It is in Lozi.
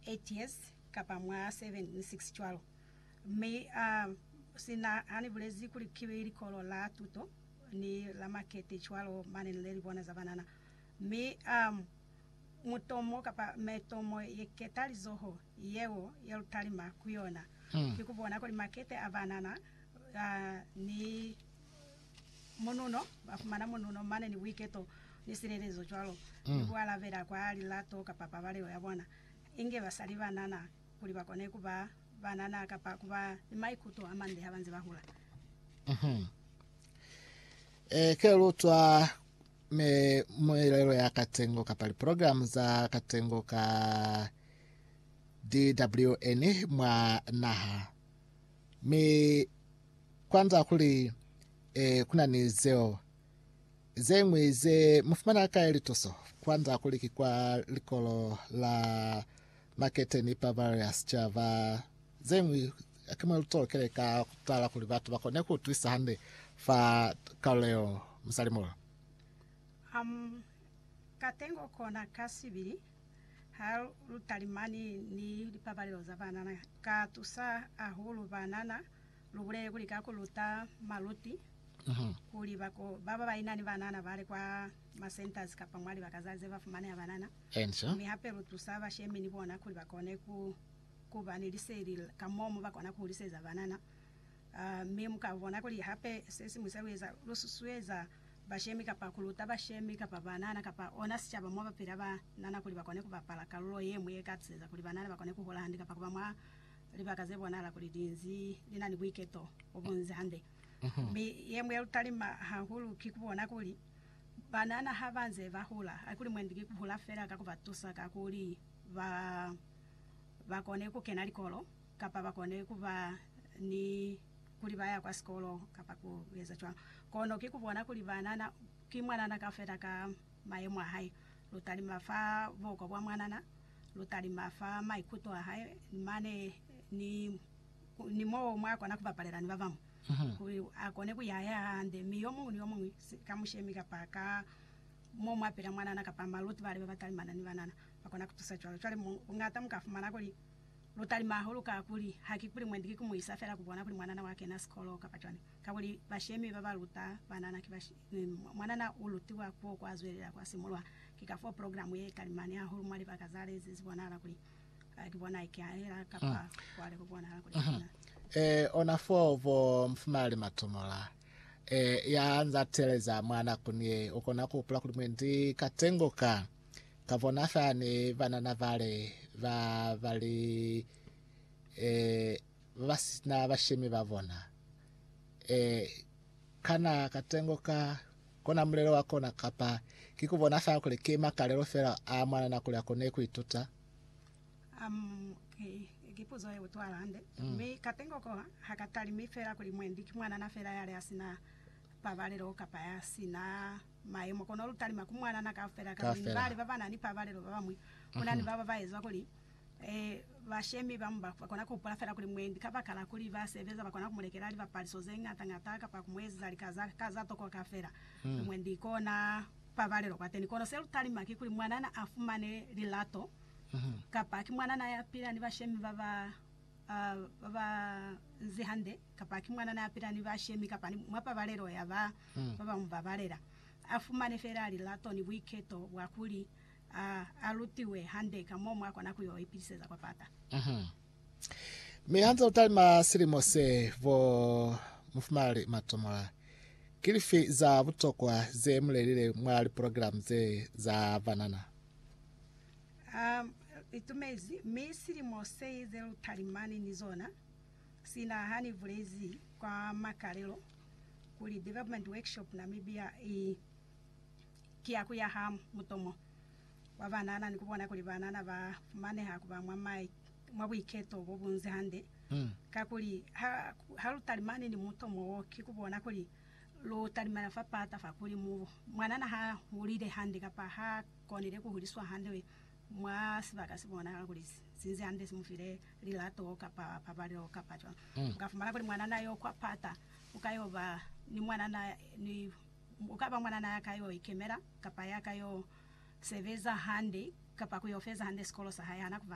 8 years kapa mwa 7 ni 6 cwalo, mi a sina hani bulezi kuli ki likolo la tuto ni la makete cwalo mane ni leli bona za banana, mi a mutomo kapa metomo ye keta lizoho yeo ye lu talima ku yona ki ku bona kuli makete a banana ni. Mununo, ba fumana mununo mane ni buiketo ni silelezo cwalo ni ku alabela kwa lilato kapa pabalelo ya bona, inge ba sa li banana, kuli ba kone ku ba banana kapa ku ba ni maikuto a mande ha ba nze ba hula. E ke lutwa mi muelelo ya katengo kapa liprogramu za katengo ka DWN mwa naha, mi Kwanza kuli, Ee, kuna ni zeo. Zeñwi ze mu fumana kai lituso? Kwanza kuli ki kwa likolo la makete ni pa Bavaria Sicaba. Zeñwi haki mwa lutolokele ka kutala kuli batu bakone ku utwisa hande fa kalulo yeo. Musalimulo. Amu katengo kona ka sibili ha lutalimani ni lipabalelo za banana, ka tusa hahulu banana. lubulele kuli ka kuluta maluti kuli bako baba baina ni banana bale kwa ma centers kapa mwa libaka za zeba fumaneha banana, mi hape lutusa bashemi ni bona kuli bakone ku kuba ni liseli ka mo mo bakona kuhuliseza banana. Mi muka bona kuli hape sesiñwi se lueza, lu susueza bashemi kapa kuluta bashemi kapa banana kapa ona sicaba mo bapila banana kuli bakone kubapala kalulo yemwi yeka hatiseza kuli banana bakone kuhola hande kapa kuba mwa Libaka ze bonahala kuli li nzi li na ni buiketo bo bu nzi hande. Mi ye ñwi ye lu talima hahulu ki ku bona kuli banana ha ba nze ba hula, haikuli mwendi ki ku hula fela ka ku ba tusa ka kuli ba ba kone ku kena likolo kapa ba kone ku ba ni kuli ba ya kwa sikolo kapa ku eza cwalo. Kono ki ku bona kuli banana ki mwanana kaufela ka mayemo a hae. Lu talima fa buhoko bwa mwanana. Lu talima fa maikuto a hae mane ni, ni mo mwa kona ku bapalela ni ba bañwi, kuli a kone ku yaya hande, mi yo muñwi ni yo muñwi ka mushemi kapa ka mo mwa pila mwanana kapa maluti bale ba ba talimana ni banana ba kona ku tusa cwalo. Cwale mu, bungata mu ka fumana kuli lu talima hahulu ka kuli, hakikuli mwendi ki ku mu isa fela ku bona kuli mwanana wa kena sikolo kapa cwani. Kakuli bashemi ba ba luta banana ki bashemi. Mwanana u lutiwa k'o kwa zwelela kwa simulwa. Ki ka f'o programe ye talimani hahulu mwa libaka za lezi ze bonahala kuli ki bona ikahela kapa kwa lebo bonahala kuli ki bona. Ee, ona f'o bo mufumaleli Matomola, ee, ya nz'a teeleza mwa nakuni ye, u kona ku hupula kuli mwendi katengo ka, ka bona fani banana bale ba ba li, ee, ba ba si na bashemi ba bona. Ee, kana katengo ka kona mulelo wa kona kapa ki ku bona fela kuli ki makalelo fela a mwa nana kuli a kone ku ituta? Um, ki, ki puzo ye utwala hande. Mm. Mi katengo ko ha ka talimi fela kuli mwendi ki mwanana fela ya li a si na pabalelo kapa ya si na mayemo, kono lu talima ku mwanana kaufela, kakuli ni Kaufela. bali ba ba na ni pabalelo ba bañwi. Ku na ni ba ba ba ezwa kuli Bashemi ba mu ba kona ku hupula fela kuli mwendi kabakala kuli ba sebeza ba kona ku mu lekela lipapaliso ze ñata-ñata kapa ku mu eziza lika ka za tokoka fela kuli mwendi kona pabalelo kwateni. Kono se lu talima ki kuli mwanana a fumane lilato kapa ki mwanana ya pila ni bashemi ba ba ba nzi hande kapa ki mwanana ya pila ni bashemi kapa ni mwa pabalelo ya ba ba mu babalela a fumane fela lilato ni buiketo bwa kuli A a lutiwe hande ka mo mwa kona ku yo ipiliseza kwa pata. Mi hanze u talima silimo se, bo mufumalali Matomola, ki lifi za butokwa ze mu lelile mwa liprogilamu ze za banana? A itumezi, mi silimo se ze lu talimani ni zona, sina ha ni bulezi kwa makalelo kuli Development Workshop Namibia i ki ya ku ya ha mutomo wa banana ni ku bona kuli banana ba fumaneha ku ba mwa mai mwa buiketo bo bunze hande. Kakuli, ha, ha lu talimani ni mutomo wo, ki ku bona kuli lu talimela fa pata fa kuli mu, mwanana ha hulile hande kapa ha konile ku huliswa hande mwa sibaka se bonahala kuli si nzi hande, si mu file lilato kapa pabalelo kapa cwalo. U ka fumana kuli mwanana yo kwa pata u ka yo ba ni mwanana ni U ka ba mwanana ya ka yo ikemela, kapa ya ka yo sebeza hande, kapa ku yo feza hande sikolo sa hae. Ha na ku ba ni buhali.